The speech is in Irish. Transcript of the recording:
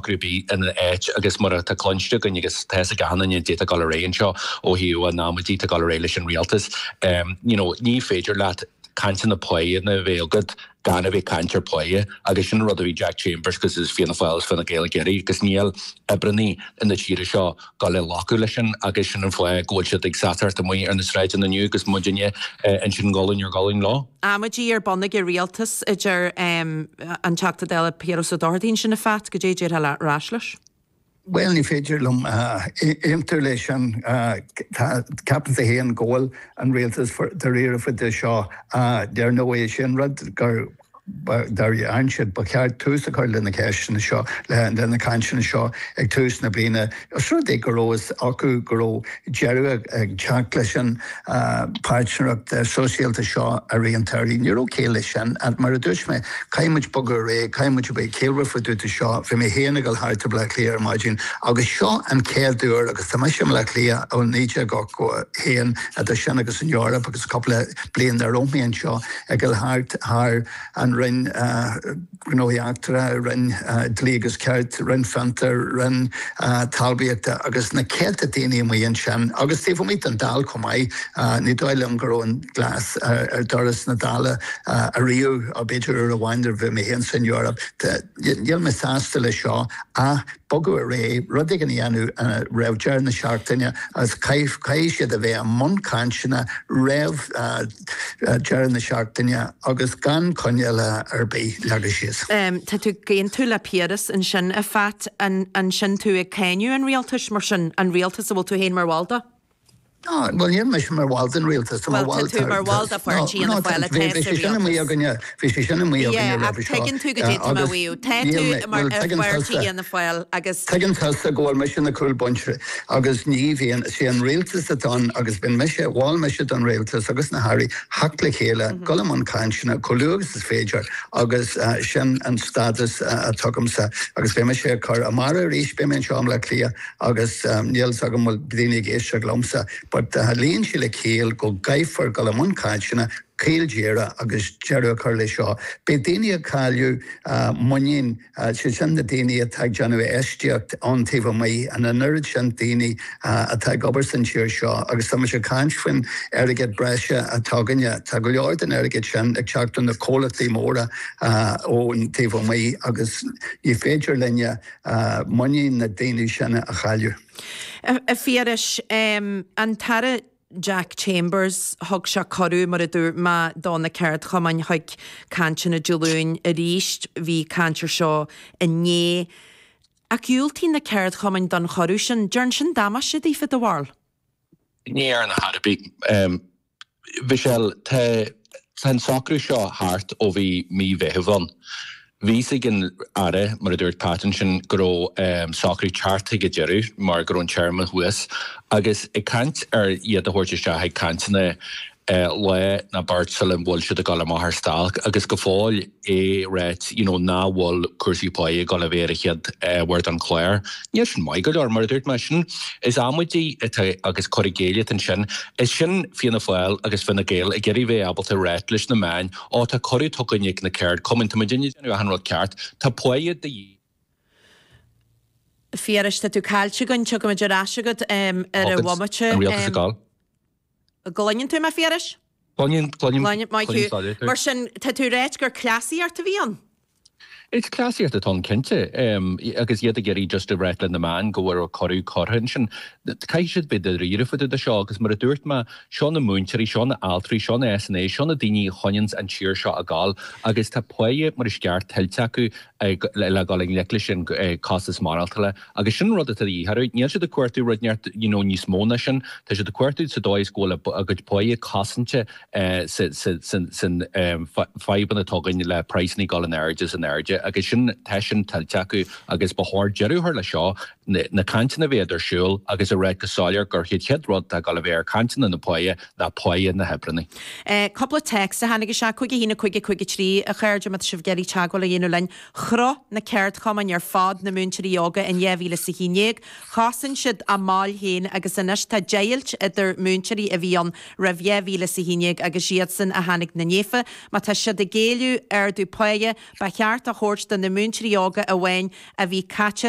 rud ar bith ina áit agus mar atá cluinte againn agus tá fhios ag achan duine goidé atá ag dul ar aghaidh anseo ó thaobh an amaidí tá dul ar aghaidh leis an Rialtas you know ní féidir leat cainteanna pá a dhéanamh a bheith agat gan a bheith caint ar pá agus sin an rud a bhí Jack Chambers agus is Fianna Fáil is Fine Gael ag iarraidh agus níl oibreannaí na tíre seo dul a ghlacadh leis sin agus sin an fáth go bhfuil siad ag satairt amuigh ar na sráideanna inniu agus muidinne ansin gualainn ar ghualainn leo. amaidí ar bun ag an rialtas, a deir an Teachta Dála Piaras Ó Dochartaigh ansin a Phat, goidé a déarfá ar ais leis. Bhuel, ní féidir liom aontú leis sin. Ceapaimse fhéin go bhfuil an rialtas dáiríre faoi seo. Dar ndóigh, sé an rud gur. Dá ainneoin sin, ba cheart tús a chur le na ceisteanna seo, le na cainteanna seo ag tús na bliana, os rud é go raibh fhios acu go raibh deireadh ag teacht leis an bpairtnéireacht sóisialta seo ar raon torthaí. Ní raibh ciall leis sin. Mar a dúirt mé, caithfidh muid bogadh ar aghaidh, caithfidh muid a bheith ciallmhar fá dtaobh de seo. Bhí mé féin ag dul thart i mBleá Cliath ar maidin agus seo an chéad uair agus tá mise i mBleá Cliath ó 1981, idir sin agus an Eoraip agus cúpla bliain nach raibh mé anseo. ag dul thart thar an Roinn Gnóthaí Eachtracha, Roinn Dlí agus Cirt, Roinn Fiontair, Roinn Talmhaíochta agus na céadta daoine amuigh ansin agus taobh amuigh den Dáil chomh maith. Ní dóigh liom go raibh an glas ar dhoras na Dála ariamh, b'fhéidir uair amháin nuair a bhí mé féin san Eoraip. Níl mé sásta leis seo ach bogadh ar aghaidh, rud éigin a dhéanamh roimh deireadh na seachtaine agus caithfidh siad a bheith i mbun cainteanna roimh dheireadh na seachtaine agus gan coinníoll ar bith leagtha síos. Tá tú ag aontú le Piaras ansin, a Phat, an sin tú ag cáineadh an rialtais, mar sin, an rialtas a bhfuil tú féin mar bhall de? Ná, bhuel, níl mise mar bhall den rialtas, tá mé mar bhall de, nó, tá, bhuel, tá tú mar bhall de pháirtí Fhianna Fáil atá sa rialtas. Bhí sé sin i mbaol againne roimhe seo. Ach tuigeann tú goidé atá mé a mhaíomh. Tá tú mar ar bheart Fhianna Fáil agus. Tuigeann tusa go bhfuil mise ar na cúlbhinsí agus ní bhíonn. Is é an rialtas atá ann agus bíonn mise, mhol mise don rialtas agus na hairí theacht le chéile, dul i mbun cainteanna chomh luath agus is féidir agus sin an stádas atá agamsa agus beidh mise ag cur amárach arís, beidh mé anseo i mBleá Cliath agus níl fhios agam bhfuil daoine ag éisteacht liomsa but luíonn sé le céill go gcaithfear dul i mbun cainteanna caol díreach agus deireadh a chur leis seo. Beidh daoine ag cailleadh muinín, sé sin na daoine atá ag déanamh infheistíocht ón taobh amuigh, an an oiread sin daoine atá ag obair san tír seo agus tá muid ag caint faoin airgead breise atá againne, tá go leor den airgead sin ag teacht ó na comhlachtaí móra ón taobh amuigh agus ní féidir linne muinín na daoine sin a chailleadh. A Phiarais, an tAire Jack Chambers, thug sé cuireadh, mar a dúirt mé, do na ceardchumainn chuig cainteanna Dé Luain arís. Bhí caint ar seo inné. Ach dhiúltaigh na ceardchumainn don chuireadh sin. An ndearn sin damáiste daofa, do bharúil? Ní dhearn ar chor ar bith, Michelle. Tá. Tá an socrú seo thart ó bhí mí Mheithimh ann. Bhí a fhios ag an Aire, mar a dúirt Pat ansin, go raibh an socrú ag teacht chuig a deireadh mar go raibh an téarma thuas agus ag caint ar iad a thabhairt isteach ag cainteanna lá nó beirt sula bhfuil siad ag dul amach ar stailc agus go fóill é ráite you know nach bhfuil cúrsaí pá ag dul a bheith ar an chéad ábhar den chlár. Níl sin maith go leor, mar a dúirt mé, sin is amaidí atá agus cur i gcéill atá ansin. Is sin Fianna Fáil agus Fine Gael ag iarraidh bheith ábalta a ráit leis na meáin ó tá cuireadh tugtha againn ag na ceardchumainn tá muid ag déanamh achan rud ceart, tá páighe de dhíth. A Phiarais, tá tú caillte againn, tiocfaimid ar ais agat ar an bhomaite. Thug an Rialtas a gcáil. gcluineann tú mé, a Phiarais? cluinim, cluinim, cluinim, maith thú. Mar sin, tá tú ag ráit gur cleasaíocht a bhí ann? Is cleasaíocht atá ann cinnte agus iad ag iarraidh just a ráit le na meáin go bhfuil cuireadh curtha ansin. Caithfidh siad bheith dáiríre fá dtaobh de seo agus mar a dúirt mé, seo na múinteoirí, seo na altraí, seo na SNAs, seo na daoine a choinneanns an tír seo ag gabháil agus tá páighe mar is gceart tuillte acu le gabháil i ngleic leis an costas maireachtála. Agus sin an rud atá de dhíth orthu. Níl siad ag cuartú rud, neart, you know, níos mó ná sin. Tá siad ag cuartú sa dóigh is go bhfuil a gcuid páighe cosanta san fadhbanna atá againn le praghsanna ag dul in airde is in airde agus sin, tá sin tuillte acu agus ba chóir deireadh a chur leis seo, na cainteanna a bheith ar siúl agus a ráit go soiléir gur chéad chéad rud atá ag dul a bheith ar cainteanna na páighe ná páighe na hoibreannaí. Cúpla téacs a tháinig isteach, cúig a haon a cúig a cúig a trí, A chairde, má tá sibh ag iarraidh teagmháil a dhéanamh linn, Chroch na ceardchumainn ar fad, na múinteoirí óga in 2011, chosain siad a mbaill féin agus anois tá deighilt idir múinteoirí a bhí ann roimh 2011 agus iadsan a tháinig ina ndiaidh. Má tá siad ag éileamh ardú páighe, ba cheart a thabhairt do na múinteoirí óga amháin a bhí caite